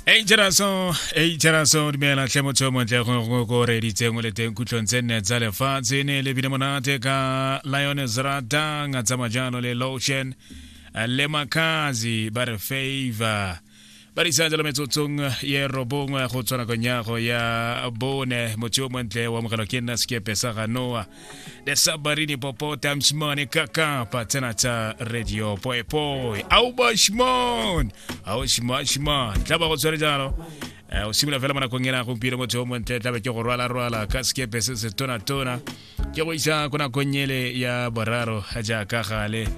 ei jeraso ei jeraso dumela tlhe motho yo montle go ko reditseng o le teng kutlong tse nne tsa lefatshe ne le bile monate ka lion zratang a tsamaya jalo le lotion le makazi ba re favor ba re isa jalo metsotsong ye robongwe go tswa nakong yago ya bone motho yo montle o amogelwa ke nna sekepe sa ganoa da sabarini popote amshimane kaka patana ta radio poepoe au bashimon au shimashimon tla ba go tshwere jalo Eh, o simolola fela mo nakong ena gompieno motho o montle tlabe ke go rwalarwala ka sekepe se se tonatona ke go isa ko nakong ele ya boraro jaaka gale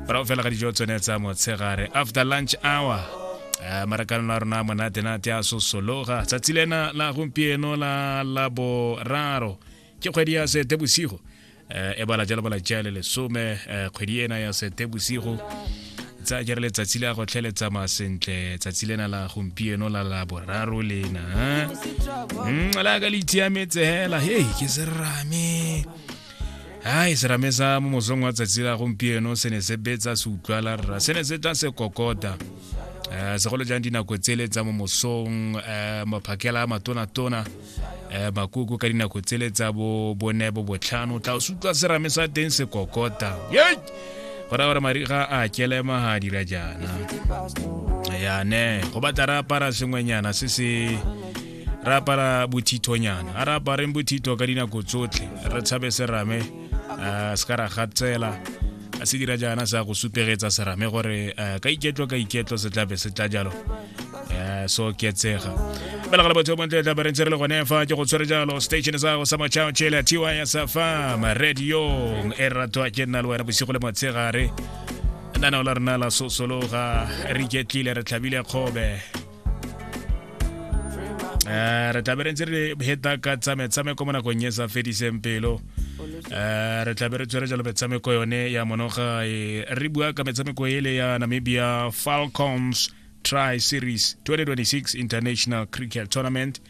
morago fela ga dijo tsone tsa motshegare after lunch hour Eh, marakanelo a rona a monatenate a sosologa tsatsi lena la gompieno la laboraro ke kgwedi ya setebosigo um e bala jalo bala jale lesome um kgwedi ena ya setebosigo tsa jere letsatsi la go tlheletsa masentle tsatsi lena la gompieno la la boraro lena mm, la ka le itiametse hela hei ke serame hai serame sa mo mosong wa tsatsi la gompieno se ne se betsa se utlwala rra se ne se tla se kokota um segolo jang dinako tsele tsa mo mosong um maphakela a matonatona um makoko ka dinako tsele tsa bo bone bo botlhano tla o se utlwa serame sa teng se kokota ye go raya gore mariga a kelema ga a dira jaana yane go batla re apara sengwenyana se se re apara bothithonyana a re apareng bothitho ka dinako tsotlhe re tshabe serame um se ka ra gatsela a se dira jaana sa go supegetsa serame gore um ka iketlo ka iketlo se tlabe se tla jalo Eh, so ke tsega bela ga lebotho bontle tla berentse re le gone fa ke go tshwere jalo station sa go sa machao chela tiwa ya sa fa ma radio e ratwa ke nna le wena bosigo le motshegare nna na o la rena la sosologa re iketlile re tlhabile kgobe eh, re tlaberentse re heta ka tsametsame ko mo nakong e sa fediseng pelo um re tlabe re tswere jalo metshameko yone ya monoga e, re bua ka metshameko ele ya namibia falcons tri series 2026 international cricket tournament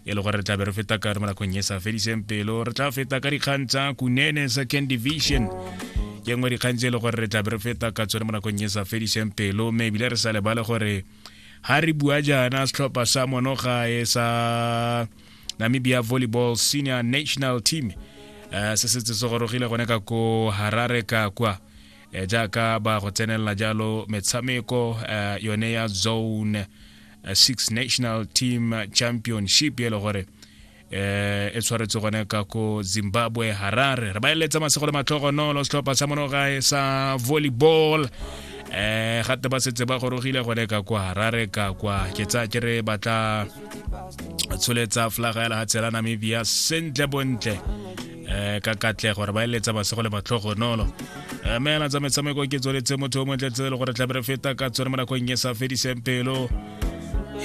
e le gore re tlabe re feta ka re mo nakong e sa fediseng pelo re tla feta ka dikgang tsa kunene second division ke nngwe dikgang tse e le gore re tlabe re feta ka tsone mo nakong e sa fediseng pelo mme ebile re sa lebale gore ha re bua jaana setlhopha sa monogae sa namibia volleyball senior national team uh, se setse se gorogile gone ka ko harare ka kwa eh, jaaka ba go tsenelela jalo metshameko uh, yone ya zone uh, six national team championship e le gore eh e tshwaretse gone ka ko zimbabwe harare re ba eletsa masego le matlhogonolo setlhopha sa monogae sa volleyball eh gape ba setse ba gorogile gone ka kwa harare ka kwa ke tsaya ke re batla tsholetsa flaga ya lehatshe la namibia sentle bontle um ka katlego gore ba eletsa basego le matlhogonolo eh, mme yana tsa metshameko ke tsweletse motho o montle tse le gore tlabe re feta ka tsone mo nakong e sa fediseng pelo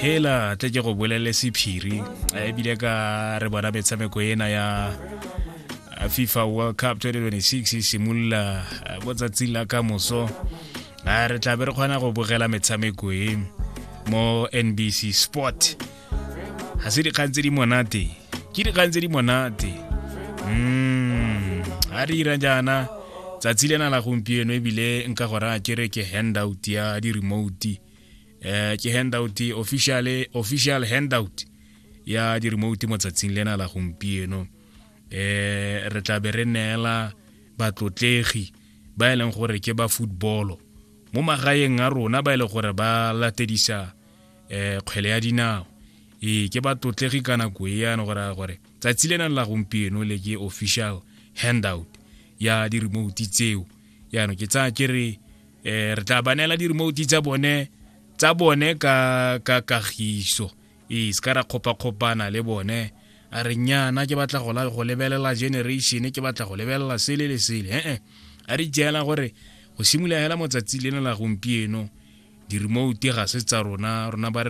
hela tle ke go bolelele sephiri eh, ebile ka re bona metshameko ena ya fifa world cup 2026 e simolola mo tsatsing la ka moso a re tlabe re kgona go bogela metshameko e mo nbc sport ga se dikgang tse di monate ke dikgang tse di monate mm, a re ira jaana tsatsi lena la gompieno ebile nka go raya kere ke handout ya di-remote um ke handout official official handout ya di-remote mo tsatsing lena la gompieno um re tlabe re neela batlotlegi ba e leng gore ke ba footballo mo magaeng a rona ba e leng gore ba latedisa um kgwele ya dinao ee ke ba tlotlegi ka nako e yana gore gore tsatsi le nang la gompieno le ke official handout ya di-remote tseo yaanong ke tsaya ke re um re tla ba neela di-remote tsa bone tsa bone ka kagiso ee se ka ra kgopakgopana le bone a re nnyana ke batla go lebelela generation ke batla go lebelela sele le sele ee a re jela gore go simolola hela motsatsi lena la gompieno di-remote ga se tsa rona rona ba re